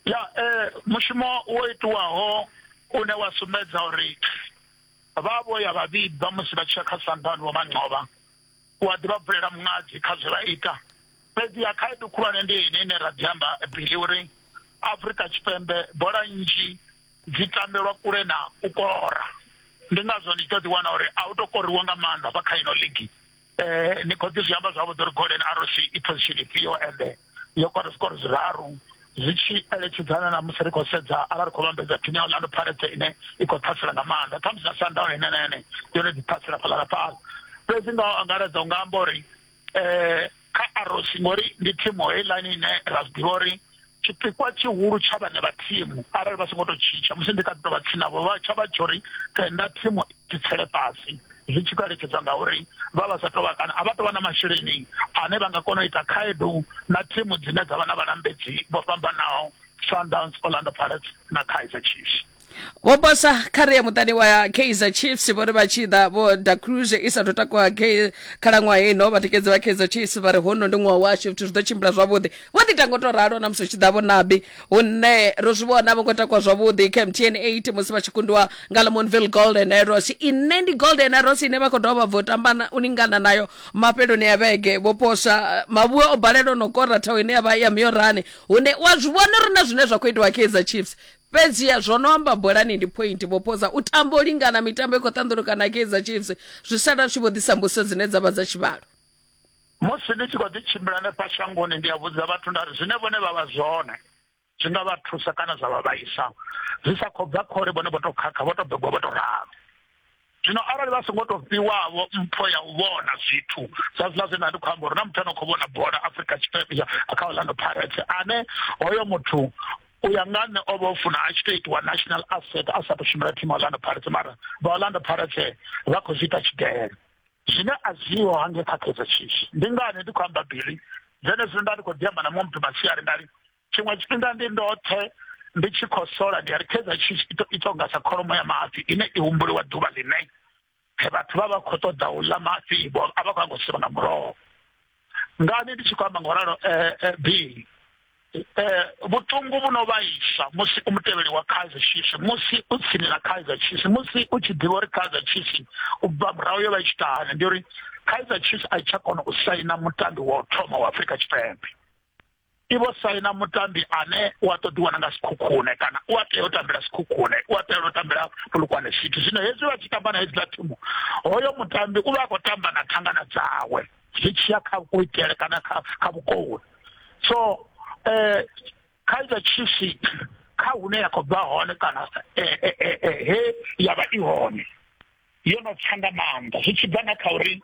ya eh mushumo wo itiwaho une wa sumbedza uri vha vho ya vha vhibva musi vha tshi ya kha sanḓani wa manqovha u a ḓivha bvulela muṅadzi kha zwe vha ita fhedzi ya khaedu khulwane ndi ine ine ra ḓi amba bili uri afrika tshipembe bola nnzhi dzi tambelwa kule na u kora ndi ngazwo ndi tshi ḓo ḓiwana uri a u to koriwa nga maanḓa vha kha ino ligi eh ni khou ḓi zwi amba zwavhuḓi uri golden arrows i position ifhio ende yo kora zwikoro zwiraru zwi tshi eletshedzana na musi ri khou sedza arali ri khou vhambedza phini ya orlando pirates ine i khou ṱhasela nga maanḓa khamusi na sundown ine na ene yone ḓi ṱhasela fhaḽa na fhaḽa fhedzi nga angaredza u nga amba uri um kha arrows ngori ndi thimu heiḽani ine ra zwi ḓivha uri tshipikwa tshihulu tsha vhane vha thimu arali vha songo tou tshitsha musi ndi kha ḓi tou vha tsinavho vha tsha vha tsho ri tenda thimu i tsele fhasi zwi tshi khou eletshedzwa ngauri vha vha sa tou vha kana a vha tou vha na masheleni ane vha nga kona u ita khaedu na thimu dzine dza vha na vhalambedzi vho fhambanaho sundowns orlando pirates na kaizer chiefs vho bosa kha ri ya muṱani wa kaizer chiefs vho ri vha tshi ḓa vho da cruise i sa tou takuwa khalaṅwaha ino vhatikedzi vha kaizer chiefs vha ri hono ndi ṅwaha washu zwithu zwi ḓo tshimbila zwavhuḓi vho ḓi tanga u tou ralo na musi tshi ḓa vho nabi hune ro zwi vhona vho ngo takuwa zwavhuḓi kha mtn 8 musi vha tshi kundiwa nga lamonville golden arrows ine ndi golden arrows ine vha khou dovha bvo tamba u lingana nayo mafheloni ya vhege vho posa mavhuwa o balelwa no kora thaho ine ya vha ya miorani hune wa zwi vhona uri na zwine zwa khou itiwa kaizer chiefs Fhedziha zwo no amba bolani ndi phointhi. Vho Poza u tamba u lingana mitambo i khou ṱanḓuluka na Kaizer Chiefs, zwi sala zwi tshi vho ḓisa mbudziso dzine dza vha dza tshivhalo. Musi ndi tshi khou ḓi tshimbila hanefha shangoni, ndi a vhudza vhathu nda ri zwine vhone vha vha zwone zwi nga vha thusa kana zwa vha vhaisa, zwi sa khou bva kha uri vhone vho tou khakha, vho tou begwa vho tou ralo. zwino arali vha songo to fhiwavho mpho ya u vhona zwithu zwa zwiḽa zwe nda ndi khou amba uri na muthu ano khou vhona bola afrika tshipembe kha orlando pirates ane hoyo muthu u ya nga nṋe o vha o funa a tshi to itiwa national asset a sa to shumela thimu orlando pirates mara vha orlando pirates vha khou zwi ita tshidele zwine a zwiho hange kha kaizer chiefs ndi ngani ndi khou amba bili zwenezwino nda ndi khou ḓi amba na muṅwe muthu masiari nda ri tshiṅwe tshifhinga ndi ndoṱhe ndi tshi khou sola ndi a ri khedza tshi ita unga sa kholomo ya mafhi ine i humbuliwa ḓuvha ḽine vhathu vha vha khou ṱoḓa u ḽa mafhi vho a vha khou anga u sivha nga muroho ngani ndi tshi khou amba nga u ralo eh, eh, b eh, vhuṱungu vhu no vhaisa musi u mutevheli wa kaizer chiefs musi u tsini na kaizer chiefs musi u tshi ḓivha uri kaizer chiefs u bva murahu yo vha i tshi tahane ndi uri kaizer chiefs a i tsha kona u saina mutambi wa u thoma wa afrika tshipembe i vho saina mutambi ane u a ṱoḓiwa na nga sikhukhune kana u a tea u tambela sikhukhune u a tea u tambela fulukwane city zwino hezwi vha tshi tamba na hedziḽa thimu hoyo mutambi u vha a khou tamba na thangana dzawe zwi tshiya kha kuitele kana kha kha vhukowe so um kaizer chiefs kha hune ya khou bva hone kana eh, eh, eh, he ya vha i hone yo no tsa nga maanḓa zwi tshi bva na kha uri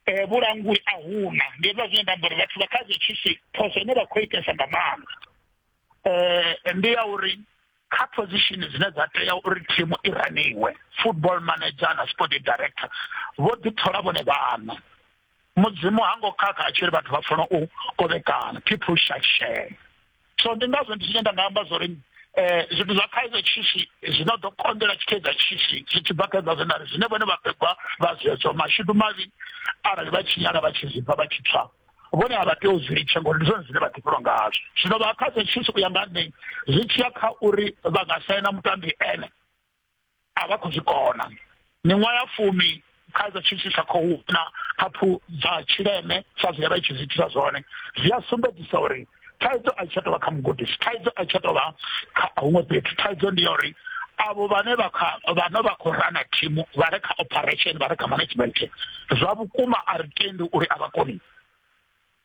um vhulanguli a huna ndi hezwa zwine nda amba uri vhathu vha kha zwi tshisi phoso ine vha khou itesa nga maanḓa um ndi ya uri kha position dzine dza tea uri thimu i raniwe football manager na sport director vho ḓithola vhone vhaṋa mudzimu ha ngo khakha a tshi ri vhathu vha funa u kovhekana people shall share so ndi ngazwo ndi zwine nda nga amba zwa uri eh, zwithu zwa kaizer chiefs zwino ḓo konḓela tshikaizer chiefs zwi tshi bva kha hezwa zwinari zwine vhone vhapegwa vha zwezwo mashudu mavhi arali vha tshinyala vha tshi zwipfa vha tshi pfa vhone a vha tea u zwi litsha ngori ndi zwone zwine vha ḓifhelwa ngazwo zwino vha kaizer chiefs u ya nga nṋe zwi tshiya kha uri vha nga saina mutambi ene a vha khou zwi kona miṅwaha ya fumi khaidzo tshi tshi sa khou na haphu dza tshileme sa zwi vha tshi zwi thusa zwone zwi a sumbedzisa uri thaidzo a tsha tovha kha mugudisi thaidzo a tsha tovha kha huṅwe fhethu thaidzo ndi ya uri avo vhane vha kha vhane vha khou rana thimu vha re kha operation vha re kha management zwa vhukuma a ri tendi uri a vha koni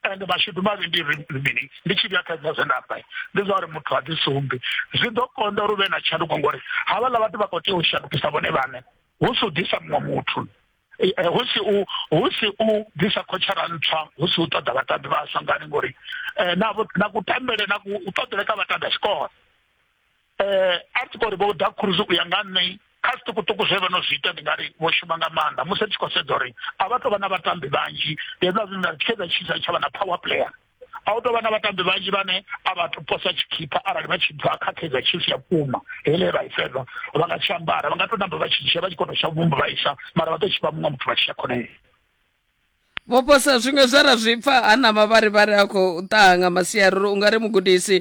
ende mashudu mavhi ndi mini ndi tshi vhuyakhaedza zwe nda amba ndi zwa uri muthu a ḓi sumbi zwi ḓo konda uri u vhe na tshanduko ngori havhaḽa vhathu vha khou tea u shandukisa vhone vhaṋe hu si u ḓisa muṅwe muthu eh, eh, hu si u hu si u ḓisa khotshara ntswa hu si u ṱoḓa vhatambi vhaswa ngani ngori eh, na kutambele na u ṱoḓele kha vhatambi a tshikolo eh, a tshi khou ri vho da cruise u ya nga nṋe kha zwiṱukuṱuku zwe vha no zwi ita ndi nga ri vho shuma nga maanḓa musi ri tshi khou sedza uri a vha tou vha na vhatambi vhanzhi hezwa zwine nda ri tshedza tshisa tsha vha na power player a u tou vha na vhatambi vhanzhi vhane a vha to posa tshikhipha arali vha tshi bva kha kaizer chiefs ya vhukuma hele vha i fedza vha nga tshi ambara vha nga tou namba vha tshi dzhia vha tshi kona u tsha vhumba vha isa mara vha tou tshifha muṅwe muthu vha tshi ya khonele vho posa zwiṅwe zwe ra zwi pfa ha na mavharivhari a khou ṱaha nga masiari uri u nga ri mugudisi